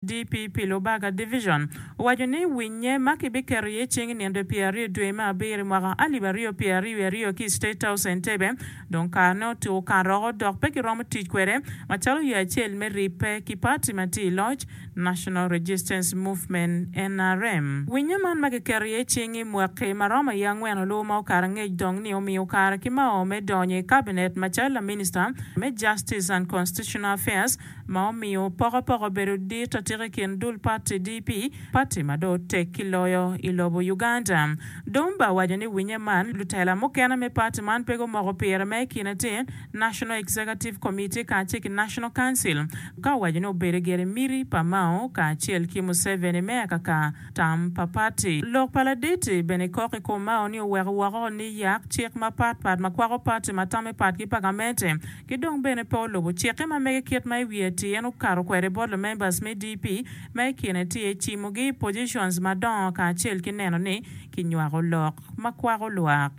DP pi Lubaga Division owaco ni winnye ma kibiketo iye cing nino pye aryo dwe me abiro mwaka alip aryo pye aryo wiye aryo ki i State House Entebbe dong karene otuko karoko dok pe giromo tic kwede macalo yo acel me ribbe ki party ma tye i loc, National Resistance Movement, nrm. Winnye man ma kiketo iye cing i mwaki ma romo i angwen oluwo ma okato angec dong ni omiyo kare ki mao me donyo i Cabinet macalo laminista me Justice and Constitutional Affairs ma omiyo pokopoko obedo dit atika i kin dul pati DP, pati ma dong otek ki loyo i lobo Uganda. Dumba owaco ni winye man lutela mukene me pati man pe gumoko pire ma i kine tye National Executive Committee kacel ki National Council ka owaco ni obedo gire miti pa Mao kacel ki Museveni me akaka tam pa pati. Lok pa Laditi bene kok i kom Mao ni oweko woko ni yak cik mapatpat ma kwako pati ma tame patgi pa gamente Ki dong bene pe olubo cikke ma mege kit ma i wiye atir en okato kwede bot lumembers me DP ma i kine tye cimogi i positions madongo kacel ki neno ni kinywako lok ma kwako lwak.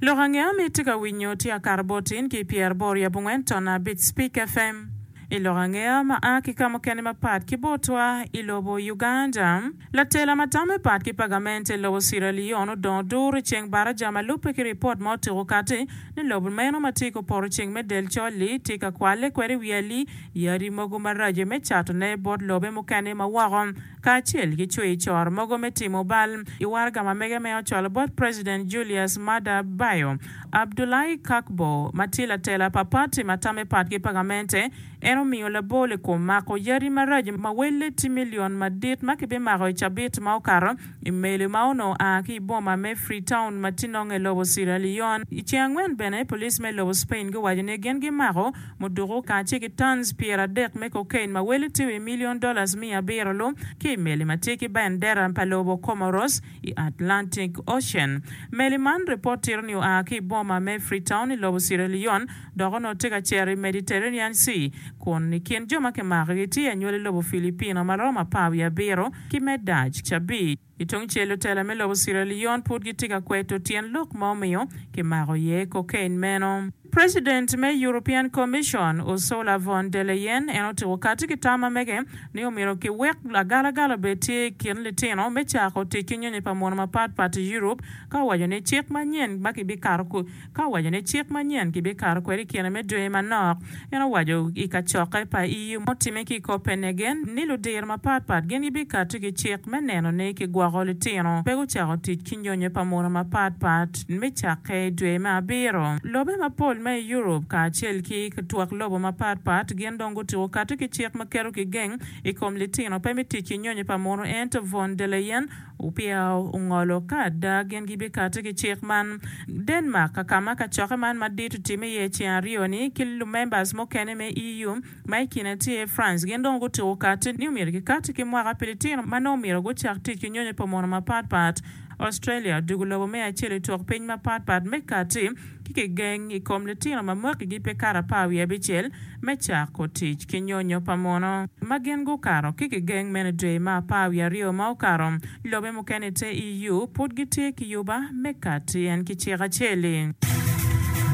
Lok ange ma itye ka winyo tye akato bot in ki i Pierre Bor Yabungwen Tonna Bit Spik FM. I lok angeya ma a ki ka mukene mapat ki botwa i lobo Uganda, latela ma tamo i pat ki pagamente lobo Sierra Leone odongo dur i ceng baraja ma lubbe ki ripot ma otuko kati ni lobo meno ma tye ki opoto ceng me del col-li tye ka kwalle kwede i wi ali yadi mogo maraco me catone bot lobe mukene ma woko. kacel ki cwicor mogo me timo bal i waraga ma mege me ocwalo bot President Julius Maada Bio. Abdulahi Kakbo, ma tye latela pa pati ma tamme pat ki pagamente, en omiyo labol i kom mako yadi marac ma welle tye milion madit ma kibimako i cabit ma okato i meli ma onongo a ki i boma me Freetown ma tye nonge lobo Sierra Leone. I ceng angwen bene, police me lobo Spain guwaco ni gin gimako Muduku kanya acel ki tons pyeradek me cocaine ma wele tye wi milion dollars miya abiro lu ki i meli ma tye ki bendera pa lobo Comoros i Atlantic Ocean. Meli man ripot tito ni oa ki i boma me Freetown i lobo Sierra Leone dok onongo tye ka cito i Mediterranean Sea kun i kin jo ma kimako-gi tye anywali lobo Filipino ma romo apar wiye abiro ki me Dutch abic. I tung cel lutela me lobo Sierra Leone pud gitye ka kweto tyen lok ma omiyo kimako iye cocaine meno. President me European Commission, Ursula von der Leyen en otiko kati ki tam ma mege ni omyero kiwek agalagala obed tye i kin litino me cako tic ki nyonyo pa mono mapat pat i Europe ka owaco ni cik manyen ma kibikato Ka owaco ni cik manyen kibikato kwede i kine me dwe manok, en owaco i kacokke pa EU mutimme ki i Copenhagen ni ludiro mapatpat gin gibikato ki cik me neno ni kigwoko litino pe gucako tic ki nyonyo pa munu mapatpat me cakke i dwe me abiro. Lobe mapol ma i Europe kacel ki twak lobo mapatpat gin dong gutuko kato ki cik ma keto kigeng i kom litino pe me tic ki nyonyo pa munu ento von der Leyen Upiao ongolo ka ada gin gibikati ki cik man. Denmark ka kama kacokke man madit otime iye i ceng aryo ni ki lumembers mukene me EU ma i kine tye France gin dong gutuko kati ni omyero gikati ki mwaka pi litino ma nongo omyero gucak tic ki nyonyo pa mono mapat pat. Australia odugo lobo me acel i twok piny mapat pat me kati. ki kigeng i kom litino ma mwakigi pe kato apar wiye abicel me cako tic ki nyonyo pa muno ma gin gukato ki kigeng mene dwe ma apar wiye aryo ma okato. Lobe mukene i te EU pud gitye ki yuba me kati en ki cik acel-li.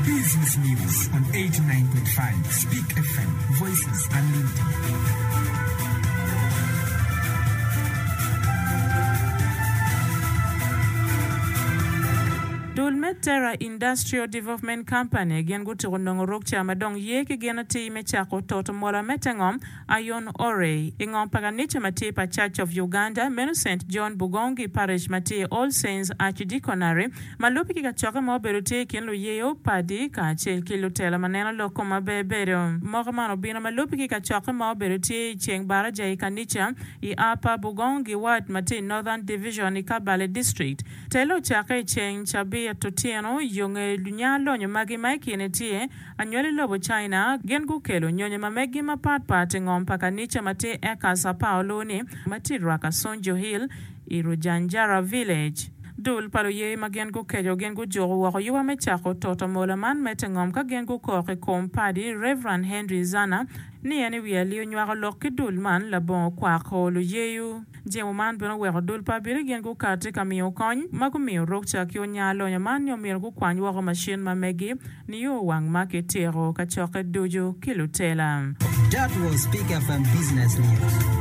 Business News on eighty nine point five Speak FM, Voices Unlimited. Dul me Terra Industrial Development Company gin gutuko nongo rukca ma dong ye ki gin atir me cako toto mola me te ngom Iron Ore i ngom pa kanica ma tye pa Church of Uganda meno Saint John Bugongi Parish ma tye i All Saints Archdeaconry ma lubbe ki kacokke ma obedo tye i kin luyeyo, padi, kacel ki lutela ma neno lok kom maber bedo. Moka man obino ma lubbe ki kacokke ma obedo tye i ceng baraja i kanica i Upper Bugongi Ward ma tye i Northern Division i Kabale District. Telo ocakke i ceng cabit otyeno yo nge nya lonyo magi ma i kine tye anywali lobo China gin gukelo nyonyo ma meggi mapat pat i ngom pa kanica ma tye eka Sao Paulo ni ma tye rwaka Sonjo Hill i Rujanjara Village. Dul pa luye ma gin gukeco gin gujuko woko yuwa me cako toto mola man me te ngom ka gin gukok i kom Padi Reverend Henry Zana ni en i wi alio nywako lok ki dul man labongo kwako luyeyu. Jemo man bene oweko dul pa Abirigen gukati ka miyo kony ma gumiyo rukca ki onya lonyo man nyo myero gukwany woko macin ma megi nio wang ma ki tiko kacokke ducu ki lutela. That was Speak FM Business News.